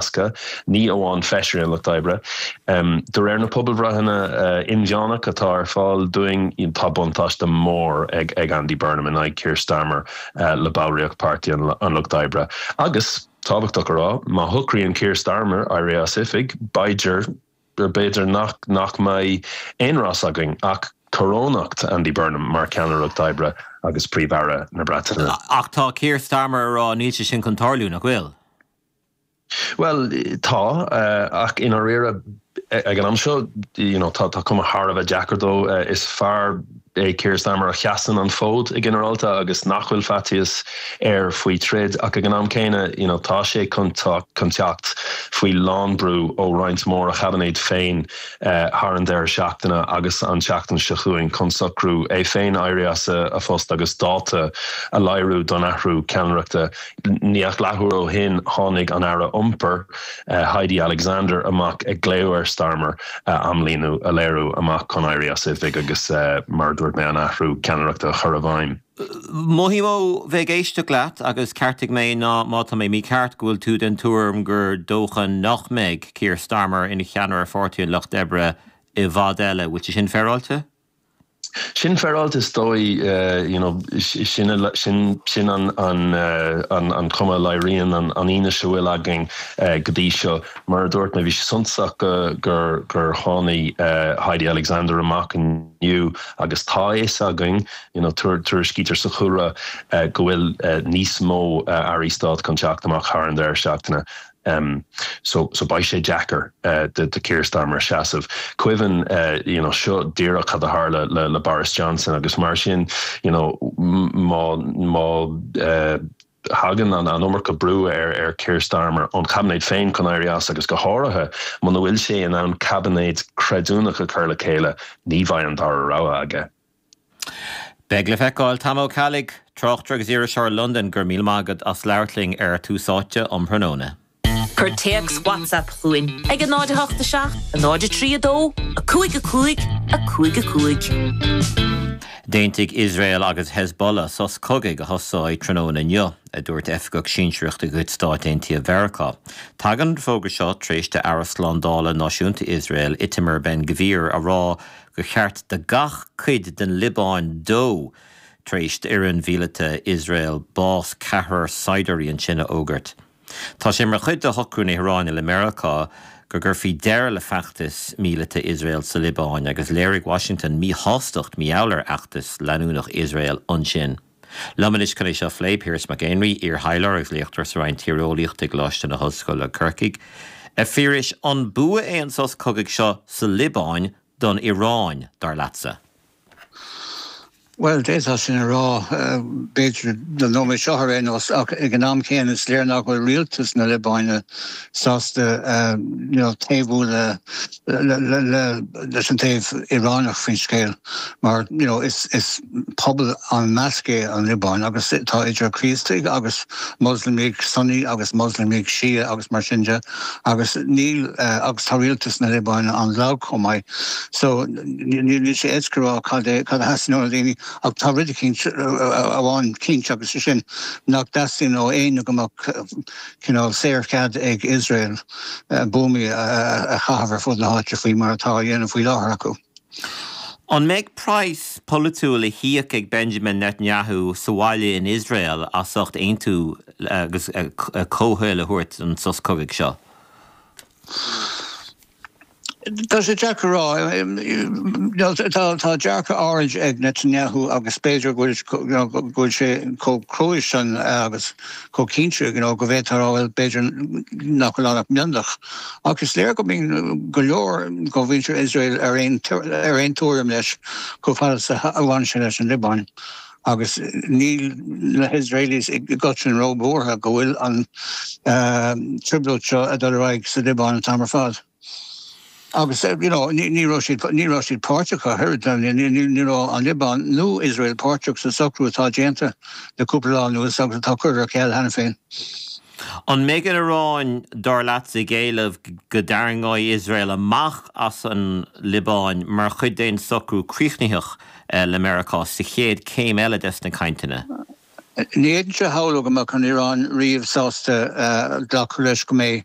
Cásca, ní amháin feisirí an Lucht Oibre. De réir na pobalbhreitheanna inmheánach atá ar fáil dúinn, tá buntáiste mór ag Andy Burnham in aghaidh Keir Starmer le ballraíocht Páirtí an Lucht Oibre. Agus, tábhachtach a rá, má shocraíonn Keir Starmer éirí as oifig, b'fhéidir nach mbeidh aon rás againn ach corónú Andy Burnham mar Cheannaire an Lucht Oibre agus Príomh-Aire na Breataine. Ach tá Keir Starmer ag rá, níl sé sin chun tarlú, nach bhfuil? Bhuel, tá, ach i ndáiríre ag an am seo you know tá tá cuma thar a bheith deacair dó. Is fear é Keir Starmer a sheasann an fód i ginearálta agus nach bhfuil faitíos air faoi troid ach ag an am céanna you know tá sé chun chun teacht faoi lánbhrú ó roinnt mhór dá chaibinéad féin thar an deireadh seachtaine agus an tseachtain seo chugainn chun socrú é féin éirí as a phost agus dáta a léiriú don athrú ceannaireachta. Níl ach leathuair ó shin tháinig an Aire Iompair, Heidi Alexander, amach ag glaoch ar Starmer amlíne a léiriú amach chun éirí as oifig agus, mar a dúirt mé, an athrú ceannaireachta a chur i bhfeidhm. Mhothaigh mé ó bheith ag éisteacht leat, agus ceartaigh mé má tá mé mícheart, go bhfuil tú den tuairim gur dócha nach mbeidh Keir Starmer ina cheannaire Pháirtí an Lucht Oibre i bhfad eile. Bhfuil sé sin féaráilte? Sin féaráilte is dóigh, you know, sin an chuma a léiríonn an fhianaise a bhfuil againn go dtí seo. Mar a dúirt mé, bhí sé suntasach gur tháinig Heidi Alexander amach inniu agus tá a fhios againn, you know, tuairiscítear sa chúlra go bhfuil níos mó airí stáit chun teacht amach thar an deireadh seachtaine em so so beidh sé deacair eh do Keir Starmer seasamh. Cuimhnigh eh you know seo díreach cad a tharla le le Boris Johnson agus mar sin you know má má eh thagann an an iomarca brú ar ar Keir Starmer ón chaibinéad féin chun éirí as agus go háirithe muna bhfuil sé in ann caibinéad creidiúnach a chur le chéile ní bheidh an dara rogha aige. Beidh le feiceáil. Tom Ó Ceallaigh, Tráchtaire agus Iriseoir i Londain Go raibh míle maith agat as labhairt linn ar Tús Áite um thráthnóna. Cuir téacs WhatsApp chugainn ag 08 7 03 2 5 5 5 5. D'aontaigh Iosrael agus Hezbollah sos cogaidh a thosóidh tráthnóna inniu, a dúirt oifigeach sinsearach de chuid Stáit Aontaithe Mheiriceá. Tagann an fógra seo tar éis d'Aire Slándála Náisiúnta Iosrael, Itamar Ben-Gvir, a rá go cheart do gach cuid den Liobáin dó, tar éis d'arm míleata Iosrael bás ceathrar saighdiúirí ansin a fhógairt. Tá sé mar chuid de shocrú na hIaráine le Meiriceá go gcuirfí deireadh le feachtas míleata Iosrael sa Liobáin agus léirigh Washington míshástacht mífhoighne ar fheachtas leanúnach Iosrael ansin. Liom anois chun é seo a phlé, Piaras Mac Éinrí, iarthaidhleoir agus léachtóir sa Roinn Tíreolaíochta i gColáiste na hOllscoile Corcaigh. A Phiarais, an bua é an sos cogaidh seo sa Liobáin don Iaráin, dar leatsa? Bhuel, d'fhéadfá sin a rá, b'fhéidir, don nóiméad seo ar aon nós, ach ag an am céanna is léir nach bhfuil rialtas na Liobáine sásta taobhú le. leis an taobh Iaráineach faoin scéal mar is pobal an-mheasctha é an Liobáin agus tá idir Críostaigh agus Moslamaigh Sunni agus Moslamaigh Shia agus mar sin de agus níl agus tá rialtas na Liobáine an-lag chomh maith so níl níl sé éasca a rá cad é cad a theastaíonn ó na daoine ach tá rud eicínt amháin cinnte agus sé sin nach dteastaíonn ó éinne go mbeadh cineál saorchead ag Iosrael buamaí a chaitheamh ar fud na háite faoi mar atá á dhéanamh faoi láthair acu. An mbeidh praghas polaitiúil le híoc ag Benjamin Netanyahu sa bhaile in Iosrael as ucht aontú agus comhthoil a thabhairt don sos cogaidh seo? Tá sé deacair a rá. Tá dearcadh áirid ag Netanyahu agus b'fhéidir go bhfuil sé chomh cruaidh san agus chomh cinnte go bhféadfá a rá bhuel b'fhéidir nach bhfuil ann ach mionlach. Ach is léir go mbíonn go leor de mhuintir Iosrael ar aon tuairim leis chomh fada is a bhaineann sé leis an Liobáin. agus níl na hIosraelis i gcoitin ró-bhuartha go bhfuil an trioblóid seo ag dul ar aghaidh sa Liobáin an t-am ar fad. Agus you know, ní raibh siad, ní raibh siad páirteach ar chor, ní raibh an Liobáin nó Iosrael páirteach sa socrú atá déanta le cúpla lá anuas agus atá curtha ar ceal cheana féin. An mbeidh an Iaráin, dar leatsa, ag éileamh go dtarraingeoidh Iosrael amach as an Liobáin mar chuid d'aon socrú críochnaitheach? le Meiriceá sa chéad céim eile des na cainteanna. Ní fhéadfainnse a shamhlú go mbeadh an Iaráin riamh sásta glacadh leis go mbeidh.